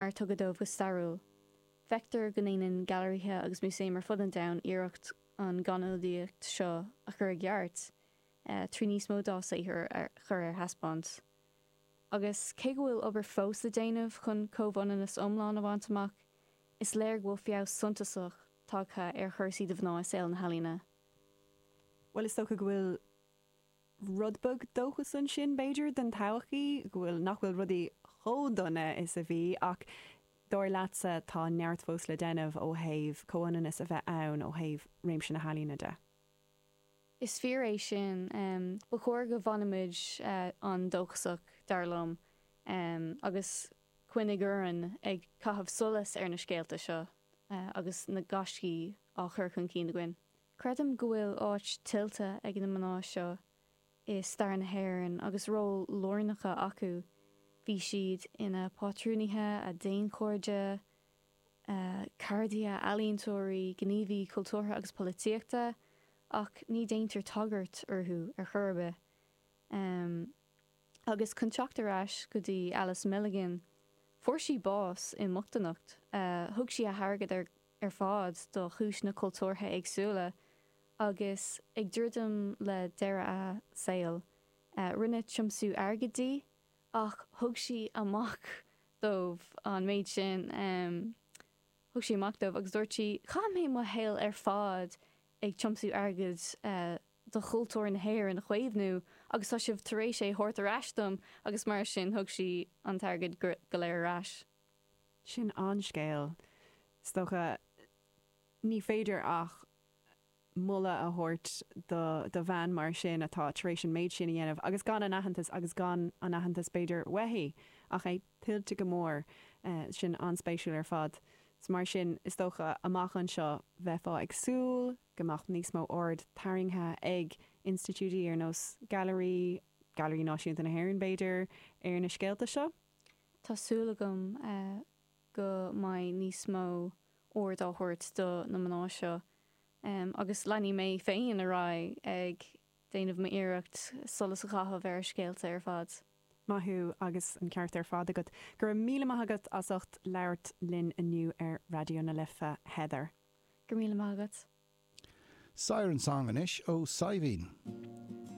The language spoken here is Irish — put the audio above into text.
mar a tugadh dóibh go stairiúil. Feictear go ndéanann gailearaithe agus músaeim ar fud an domhain iarracht an ghannionadaíocht seo a chur i gceart trí níos mó dá saothar a chur ar taispeáint. Agus cé go bhfuil obair fós le déanamh chun comhionannas iomlán a bhaint amach, is léir go bhfuil feabhas suntasach tagtha ar chúrsaí do mhná i saol na healaíona. Bhuel, is dócha go bhfuil. Rud beag dóchas ansin, b'fhéidir, don todhchaí, go bhfuil, nach bhfuil rudaí chomh dona is a bhí, ach dar leatsa, tá neart fós le déanamh ó thaobh comhionannas a bheith ann ó thaobh réimse na healaíona de. Is fíor é sin. Ba chóir go bhfanfaimid an-dóchasach, dar liom, agus coinneáil orainn ag caitheamh solas ar na scéalta seo agus na gaiscí á chur chun cinn againn. Creidim go bhfuil áit tuillte ag na mná seo i stair na hÉireann agus ról lárnach acu, bhí siad ina pátrúnaithe, daonchairde, ceardaithe, ealaíontóirí, gníomhaithe cultúrtha agus polaitíochta, ach ní déantar tagairt orthu ar chor ar bith. Agus chun teacht ar ais go dtí Alice Milligan, fuair sí bás i mbochtanacht, thug sí a hairgead ar. ar fad do chúiseanna cultúrtha éagsúla agus ag druidim le deireadh a saoil rinneadh tiomsú airgid di ach thug sí amach dóibh an méid sin, thug sí amach dóibh agus dúirt sí, 'chaith mé mo shaol ar fad ag tiomsú airgid do chultúr na hÉireann a chaomhnú agus tá sibh tar éis é thabhairt ar ais dom' agus mar sin thug sí an t-airgead go léir ar ais. Sin scéal iontach. Ní féidir ach moladh a thabhairt do do bhean mar sin atá tar éis an méid sin a dhéanamh agus gan an aitheantas, agus gan an aitheantas b'fhéidir uaithi ach é tuillte go mór. Sin an-spéisiúil ar fad. Is mar sin, is dócha, amach anseo bheifeá ag súil go mbeadh níos mó aird tarraingthe ag institiúidí ar nós Gailearaí, Gailearaí Náisiúnta na hÉireann b'fhéidir, ar na scéalta seo. Tá súil agam go mbeidh níos mó aird á thabhairt do na mná seo agus leanfaidh mé féin ar aghaidh ag déanamh mo iarracht solas a chaitheamh ar a scéalta ar fad. Maith thú agus an ceart ar fad agat. Go raibh míle maith agat as ucht labhairt linn inniu ar Raidió na Life, Heather. Go raibh míle maith agat. Saor an sang anois ó Saidhbhín.